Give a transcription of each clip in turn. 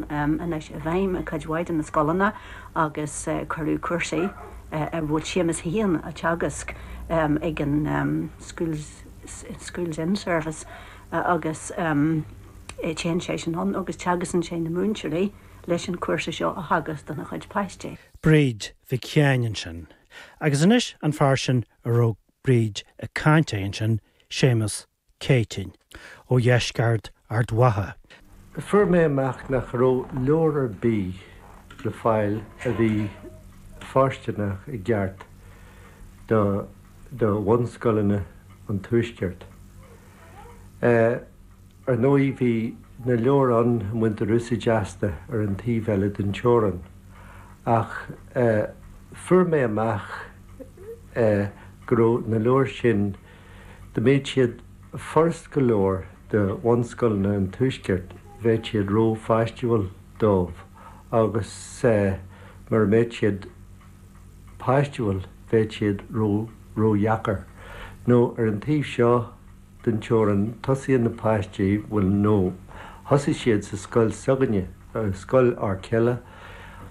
Anois i bhfeidhm i cuid mhaith de na scoileanna agus cuireadh cúrsaí a bhfuil Séamus féin á dteagasc ag an Schools In-Service agus téann seisean ann agus teagascann sé na múinteoirí leis an chúrsa seo a theagasc dona gcuid páistí. Bríd Mhic Sheáin ansin. Agus anois an fear sin a raibh Bríd ag caint air ansin, Séamus Céitinn ó dheisceart Ard Mhacha. Fuair mé amach nach raibh leabhar ar bith le fáil a bhí fóirsteanach i gceart do do bhunscoileanna an tuaiscirt. Ar ndóigh bhí na leabhair ann a mbaintear úsáid astu ar an taobh eile den teorainn ach fuair mé amach go raibh na leabhair sin Dá mbeadh siad furast go leor do bhunscoileanna an Tuaiscirt bheadh siad rópháistiúil dóibh agus mura mbeadh siad páistiúil bheadh siad ródheacair. Nó ar an taobh seo den teorainn tosaíonn na páistí, bhuel nó thosaigh siad sa scoil s'againne, scoil Fhoirceala,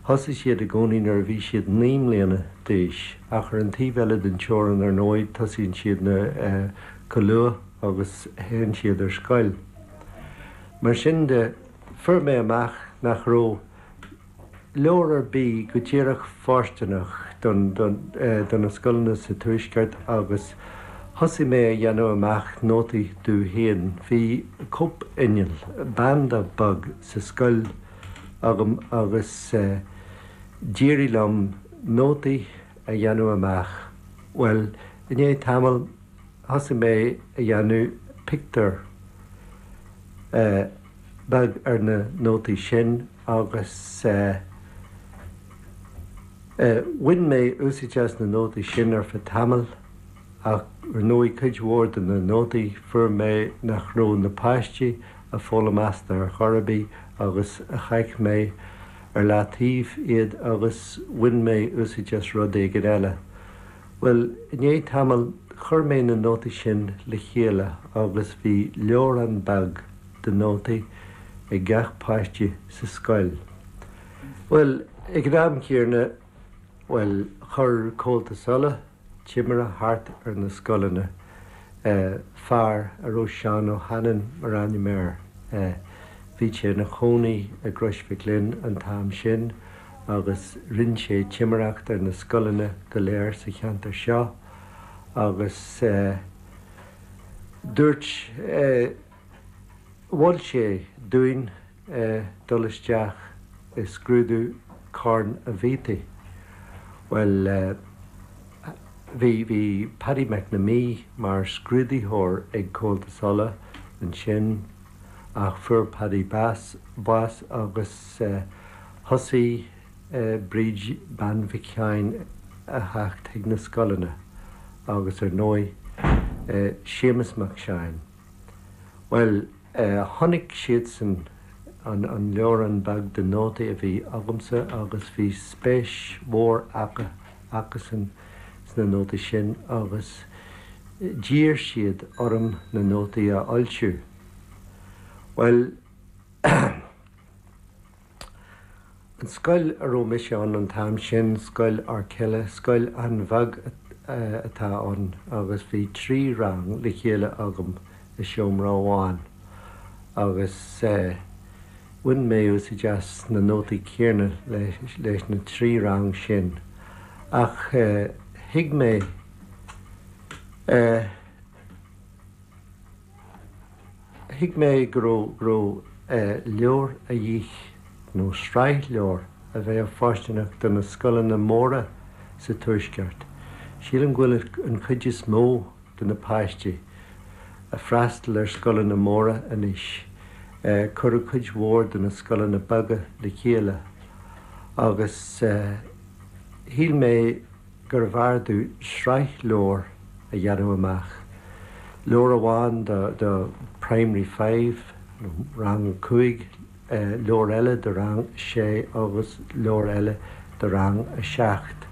Thosaigh siad i gcónaí nuair a bhí siad naoi mbliana d'aois, ach ar an taobh eile den teorainn, ar ndóigh, tosaíonn siad chomh luath agus théann siad ar scoil. Mar sin de, fuair mé amach nach raibh leabhar ar bith go díreach fóirsteanach do na scoileanna sa Tuaisceart agus thosaigh mé a dhéanamh amach nótaí domh féin. Bhí cóip-inneall, banda bog, sa scoil. agam agus d'éirigh liom nótaí a dhéanamh amach. Bhuel, i ndiaidh tamaill thosaigh mé a dhéanamh pictiúr beag ar na nótaí sin agus bhain mé úsáid as na nótaí sin ar feadh tamaill. ach ar ndóigh cuid mhór de na nótaí fuair mé nach raibh na páistí ag foghlaim astu ar chor ar bith agus chaith mé ar leataobh iad agus bhain mé úsáid as rud éigin eile. Bhuel, i ndiaidh tamaill, chuir mé na nótaí sin le chéile agus bhí leabhrán beag de nótaí ag gach páiste sa scoil. Bhuel, ag an am chéanna, Bhuel, chuir Comhaltas Uladh timire thart ar na scoileanna, fear a raibh Seán Ó hAnnain mar ainm air. Bhí sé ina chónaí i gCrois Mhic Fhloinn an t-am sin agus rinn sé timireacht ar na scoileanna go léir sa cheantar seo agus dúirt, mhol sé dúinn eh dul isteach i scrúdú Corn an Bhiataigh. Bhuel eh bhí, bhí Paddy McNamee mar scrúdaitheoir ag Comhaltas Uladh ansin ach fuair Paddy bas, bás agus eh thosaigh eh Bríd Bean Mhic Sheáin a theacht chuig na scoileanna agus ar ndóigh eh Séamus Mac Seáin. Bhuel. Chonaic siadsan an leabhrán beag de nótaí a bhí agamsa agus bhí spéis mhór acusan sna nótaí sin agus d'iarr siad orm na nótaí a fhoilsiú. Bhuel. An scoil a raibh mise ann an t-am sin, Scoil Arkilla, scoil an-bheag atá ann agus bhí trí rang le chéile agam i seomra amháin agus bhain mé úsaid as na nótaí céanna leis na trí rang sin ach thuig mé Thuig mé go raibh leabhar a dhíth nó sraith leabhar a bheadh fóirsteanach do na scoileanna móra sa Tuaisceart. Sílim go bhfuil an chuid is mó de na páistí a freastal ar scoileanna móra anois, cuireadh cuid mhór de na scoileanna beaga le chéile agus shíl mé, gurbh fhearr domh sraith leabhar a dhéanamh amach, leabhar amháin do Primary Five nó Rang a Cúig, leabhar eile do Rang a Sé agus leabhar eile do Rang a Seacht.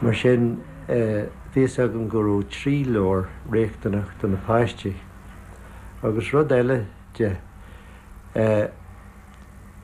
Mar sin, bhí fhios agam go raibh trí leabhar riachtanach do na páistí. Agus rud eile de.